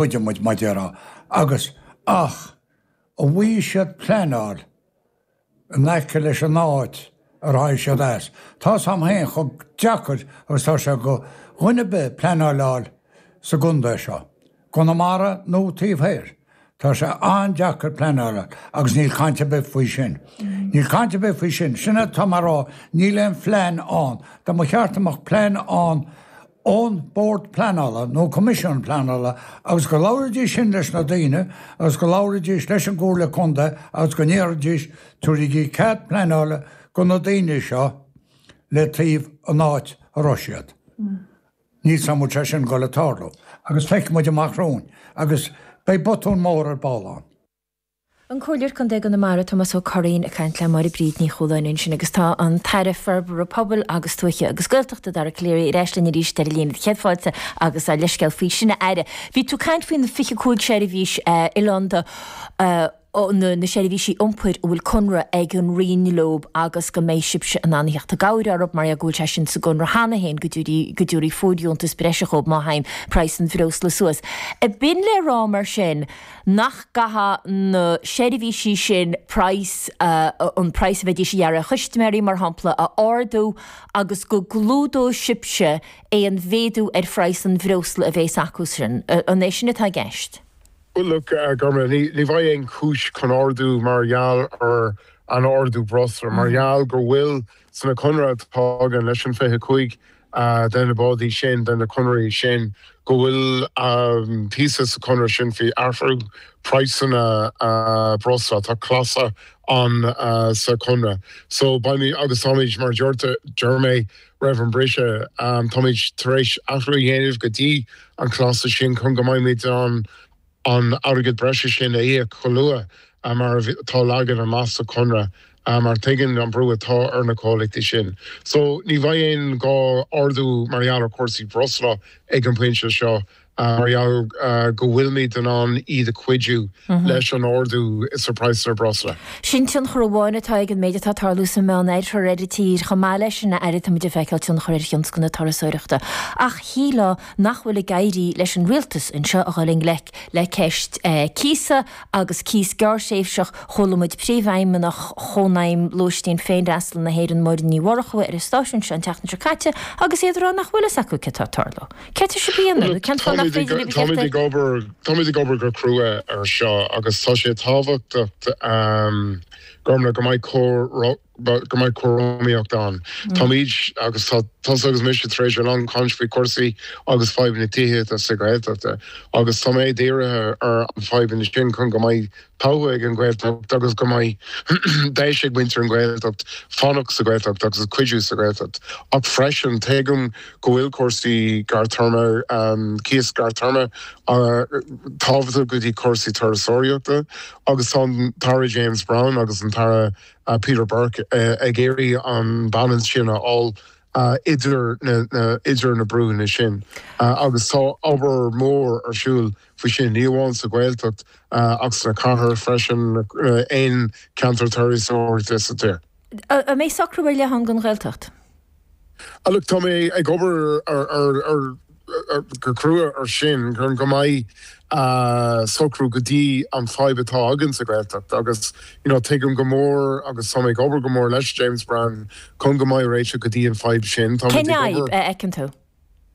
chuidigh muid leothu agus ach a bhuí siad pleanáil in aice leis an áit ar tháinig siad as. Tá fhios agam féin chomh deacair agus tá sé go dhuine ar bith pleanáileáil sa gcontae seo, i gConamara nó taobh thoir. Tá sé an-deacair pleanáileáil agus níl caint ar bith faoi sin. Níl caint ar bith faoi sin. Sin atá mé a rá, níl aon phlean ann. Dá mba cheart a mbeadh plean ann ón Bord Pleanála nó Coimisiún Pleanála agus go labhraídís sin leis na daoine agus go labhraídís leis an gComhairle Contae agus go ndéarfaidís, tabhairígí cead pleanála go na daoine seo le taobh an áit a raibh siad. Níl fhios agam an bhfuil sé sin ag goil ag tarlú agus feicfidh muid amach romhainn agus beidh botún mór ar ball ann. An Comhairleoir Contae i gConamara, Tomás Ó Curraoin ag caint le Máire Bríd Ní Chualáin ansin agus tá an tAire Forbartha Pobail agus Tuaithe agus Gaeltachta, Dara Calleary ar ais linn arís ar an líne. Céad fáilte agus ár leithscéal faoi sin a Aire. Bhí tú ag caint faoi na 25 seirbhís oileánda, na seirbhísí iompair a bhfuil conradh ag an Roinn leo agus go mbeidh sibhse in ann a theacht i gcabhair orthu mar go bhfuil sé sin sa gconradh cheana féin go dtabharfaí fóirdheontas breise dhóibh má théann praghas an bhreosla suas. B'in le rá mar sin, nach gcaithfeadh na seirbhísí sin praghas, an praghas a bheidís ag iarraidh ar chustaiméirí, mar shampla, a ardú agus go gclúdódh sibhse aon mhéadú ar phraghas an bhreosla a bheas acu sin. An é sin atá i gceist? Bhuel, look a Ghormfhlaith, ní bheidh aon chúis chun ardú mar gheall ar an ardú breosla, mar gheall go bhfuil sna conradh atá againn leis an 25 de na bádaí sin, de na conraí sin, go bhfuil píosa sa chonradh sin faoi athrú praghsanna breosla, tá clásal ann sa chonradh. So, beimid, agus táimid, mar a deir mé roimh an briseadh, táimid tar éis athrú a dhéanamh go dtí an chlásal sin chun go mbeimid in ann an airgead breise sin a íoc chomh luath mar atá leagtha amach sa chonradh mar tuigeann an brú atá ar na comhlachtaí sin. So ní bheidh aon ghá ardú mar gheall ar chúrsaí breosla ag an bpointe seo mar gheall go bhfuilimid in ann iad a chuidiú leis an ardú sa praghsanna breosla. Sin tionchar amháin atá ag an méid atá ag tarlú sa Meán Oirthear ar an tír seo. Chomh maith leis sin, a Aire, táimid ag feiceáil tionchar ar thionscal na turasóireachta. Ach shílfeá nach bhfuil ag éirí leis an rialtas anseo a dhul i ngleic le ceist cíosa agus cíos gearrthréimhseach. Chuala muid Príomhfheidhmeannach Chónaidhm Lóistín Féinfhreastail na hÉireann Máire Ní Mhurchú ar an stáisiún seo an tseachtain seo caite agus iad ag rá nach bhfuil fhios acu cad tá ag tarlú. Céard tá sibh a dhéanamh nó cén fáth nach féidir libh a theacht air? Táimid ag obair go crua ar seo agus tá sé tábhachtach a Ghormfhlaith, go mbeidh cóir go mbeidh cothromaíocht ann. Táimid, agus tá tusa agus mise, tar éis a lán caint faoi chúrsaí agus fadhb na tithíochta sa Ghaeltacht agus tá mé dírithe ar na fadhbanna sin chun go mbeidh todhchaí ag an Ghaeltacht agus go mbeidh deis ag muintir an Ghaeltacht fanacht sa Ghaeltacht agus cuidiú sa Ghaeltacht ach freisin tuigim go bhfuil cúrsaí gartéarma, cíos gartéarma, tábhachtach go dtí cúrsaí turasóireachta agus tá an tAire James Browne agus an tAire Peter Burke ag iarraidh an balance sin a fháil idir na brúnna sin agus tá obair mhór ar siúl faoi sin, ní amháin sa Ghaeltacht ach sna cathair freisin, aon cheantar turasóireachta sa tír. An mbeidh socrú ar leith ann don Ghaeltacht? Á, look, tá mé ag obair go crua ar sin, chun go mbeidh socrú go dtí an fadhb atá againn sa Ghaeltacht agus, you know, tuigim go mór agus tá mé ag obair go mór leis James Browne chun go mbeidh réiteach go dtí an fadhb sin. Tá muid ag obair. Cén fhadhb a fheiceann tú?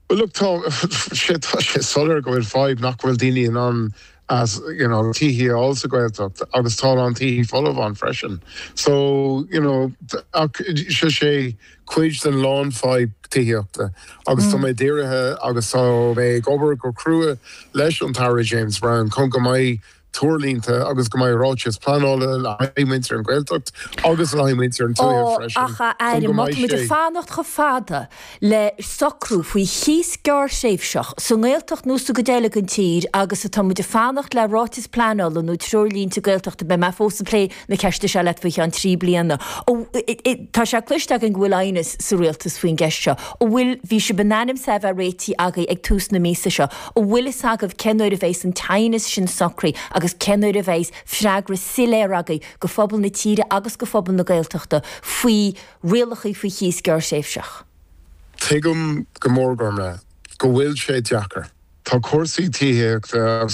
Look tá sé tá sé soiléir go bhfuil fadhb nach bhfuil daoine in ann as you know tithe a fháil sa Ghaeltacht agus tá a lán tithe folamh ann freisin so you know ach sé sé cuid den lán fadhb tithíochta agus tá mé dírithe agus tá mé ag obair go crua leis an tAire James Browne chun go mbeidh treoirlínte agus go mbeidh ráiteas pleanála le haghaidh muintir an Ghaeltacht agus le haghaidh muintir an tuaithe freisin chun go mbeidh sé. Ó, ach a Aire, má tá muid ag fanacht chomh fada le socrú faoi chíos gearrthréimhseach sa nGaeltacht nó sa gcuid eile den tír agus atá muid ag fanacht le ráiteas pleanála nó treoirlínte Gaeltachta, beidh mé fós ag plé na ceiste seo leat faoi cheann trí bliana. Tá sé cloiste againn go bhfuil aighneas sa rialtas faoin gceist seo. An bhfuil, bhí sibh in ainm is é a bheith réitithe agaibh ag tús na míosa seo, an bhfuil fhios agaibh cén uair a bheas an t-aighneas sin socraithe agus cén uair a bheas freagra soiléir agaibh do phobal na tíre agus do phobal na Gaeltachta faoi rialacha faoi chíos gearrthréimhseach? Tuigim go mór, Gormlaith, go bhfuil sé deacair. Tá cúrsaí tithíochta agus.